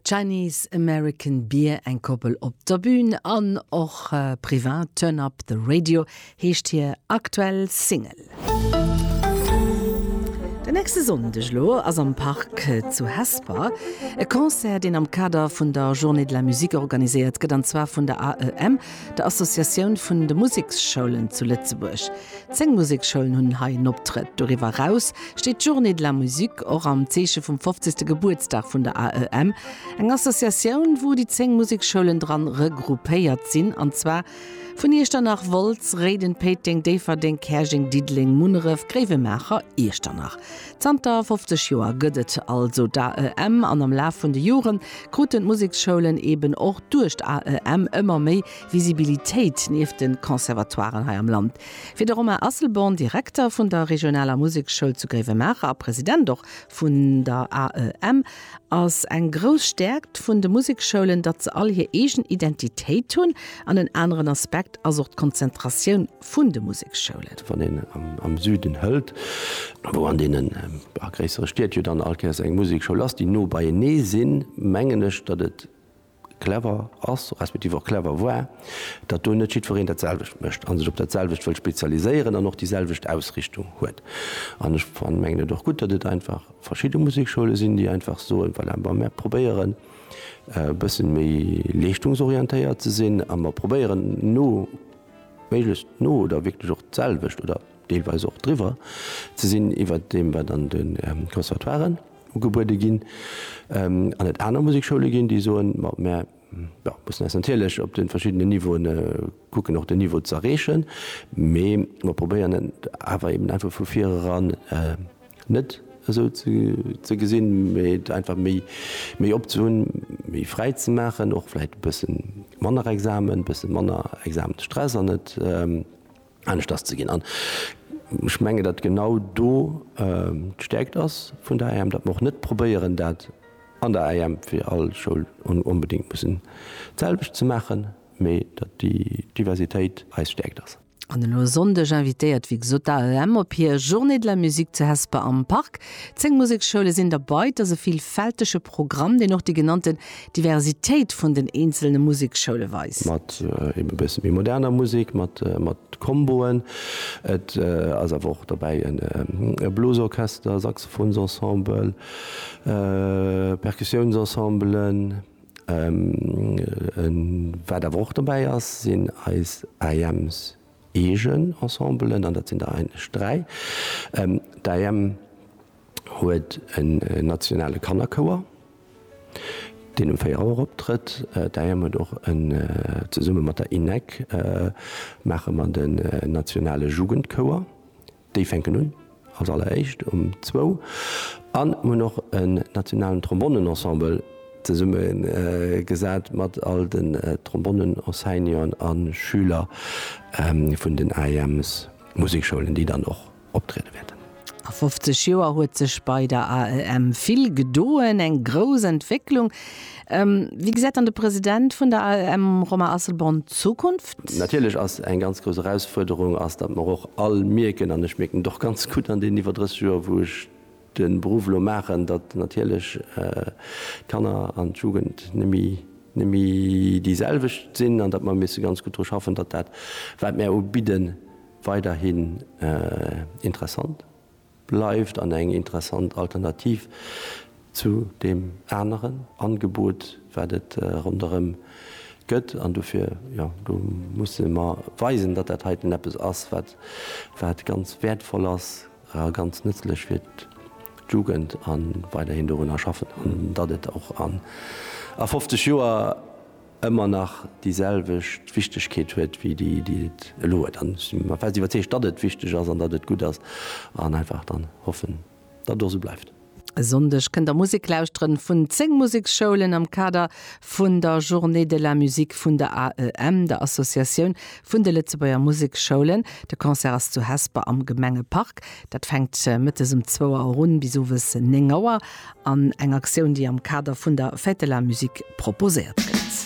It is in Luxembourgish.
Chinese American Beer, eng Koppel op der Bühn an och privat, Turn Up The Radio heescht hir aktuell Single. Den nächste Sonndeg elo ass am Park zu Hesper e Concert, deen am Kader vun der Journée de la Musique organiséiert gëtt, an zwar vun der AEM. der Associatioun vun de Museksschoulen zu Lëtzebuerg. Zéng Museksschoulen hunn hei en Optrëtt. Doriwwer eraus steet d'Journée de la Musique, och am Zeeche vum 50. Gebuertsdag vun der AEM, eng Associatioun, wou déi zéng Museksschoulen dran regroupéiert sinn, an zwar vun Iechternach, Wolz, Réiden, Péiteng, Déifferdeng, Käerjeng, Diddeleng, Munneref, Gréiwemaacher, Iechternach. Zanter 50 Joer gëtt et also d'AEM an am Laf vun de Jore kruten d'Museksschoulen eben och duerch d'AEM ëmmer méi Visibilitéit nieft de Conservatoiren hei am Land. Fir de Romain Asselborn, Direkter vun der regionaler Musekschoul zu Gréiwemaacher a President och vun der AEM, ass eng grouss Stäerkt vun de Museksschoulen, datt se all hir eegen Identitéit hunn. An en aneren Aspekt ass och d'Konzentratioun vun de Museksschoulen. Wann een am Süden hëlt, wou an deene gréissere Stied jo dann all Kéiers eng Musekschoul ass, déi no beienee sinn, mengen ech, datt et clever ass, respektiv och clever war, datt do net jiddwereen dat selwecht mécht a sech op dat selwecht wëll spezialiséieren an och déi selwecht Ausrichtung huet. An ech mengen et och gutt, datt et einfach verschidde Musekschoule sinn, déi einfach soen, voilà, bon, mir probéieren e bësse méi leeschtungsorientéiert ze sinn a mir probéieren no, méiglechst no oder wierklech och d'selwecht oder deelweis och driwwer ze sinn iwwert deem, wat an de Conservatoiren ugebuede ginn. An et aner Musekschoule ginn, déi soen, ma mär mussen eis natierlech op de verschiddenen Niveauen kucken, och den Niveau z'erreechen, mee mer probéieren et awer eeben einfach vu vir eran. Net esou ze gesinn, mee et einfach méi, méi op ze hunn, méi fräi ze maachen, och vläicht e bësse manner Examen, e bësse manner Examensstress an et aneschters ze ginn. An ech mengen, datt genau do d'Stäerkt ass vun der IM, datt mer och net probéieren, dat an der IM fir all Schoul onbedéngt mussen d'selwecht ze maachen, mee datt déi Diversitéit eis Stäerkt ass. An elo e Sonndeg invitéiert wéi gesot d'AEM op hir Journée de la musique zu Hesper am Park. Zéng Museksschoule sinn derbei. Et ass e villfältege Programm, deen och déi genannten Diversitéit vun den eenzelne Museksschoule weist. Mat eebe bësse méi moderner Musek, mat Comboen. Et ass awer och derbäi e Blosorchester, Saxophonsensemble, Perkussiounensensemblen. Wat awer och dobäi ass, sinn eis AEM's eegen Ensembelen, an dat sinn der eigentlech dräi. D'AEM huet en nationale Kannerchouer, deen um 4 Auer optrëtt. D'AEM huet och en, zesumme mat der INEC maache mer den nationale Jugendchouer. Déi fänken un als alleréischt um zwou an hunn och en nationalen Trombonnenensemble zesumme gesat mat all den Trombonnenenseignanten a Schüler vun den AEM's Musikschoulen, déi dann och optriede wäerten. A 50 Joer huet sech bei der AEM vill gedoen, eng grouss Entwécklung. Wéi gesäit dann de President vun der AEM Romain Asselborn d'Zukunft? Natierlech ass eng ganz grouss Erausfuerderung ass, datt mer och all mierken, an ech mierken et och ganz gutt an deenen iwwer 30 Joer wou ech de Beruff elo maachen, datt natierlech d'Kanner an d'Jugend nemme déi selwecht sinn an datt mer misse ganz gutt dru schaffen, datt dat wat mär ubidde weiderhin interessant. Bleift an eng interessant Alternativ zu deem aneren Angebot, wat et ronderëm gëtt. An dofir, jo, do musse mer weisen, datt dat heiten eppes ass, wat, wat ganz wäertvoll ass a ganz nëtzlech fir d'Jugend a weiderhin dorunner schaffen an datt et och a 50 Joer, ëmmer nach déi selwecht Wichtegkeet huet wéi déi et elo huet. An ech si mer fest iwwerzeegt, datt et wichteg ass an datt et gutt ass an einfach dann hoffen, datt et och esou bleift. E Sonndeg kënnt der Musek lauschteren vun 10 Museksschoulen am Kader vun der Journée de la Musique vun der AEM, der Associatioun vun de Lëtzebuerger Museksschoulen. De Concert ass zu Hesper am Gemengepark. Dat fänkt mëttes um zwou Auer un bis owes néng Auer an eng Aktioun, déi am Kader vun der Fête de la Musique proposéiert gëtt.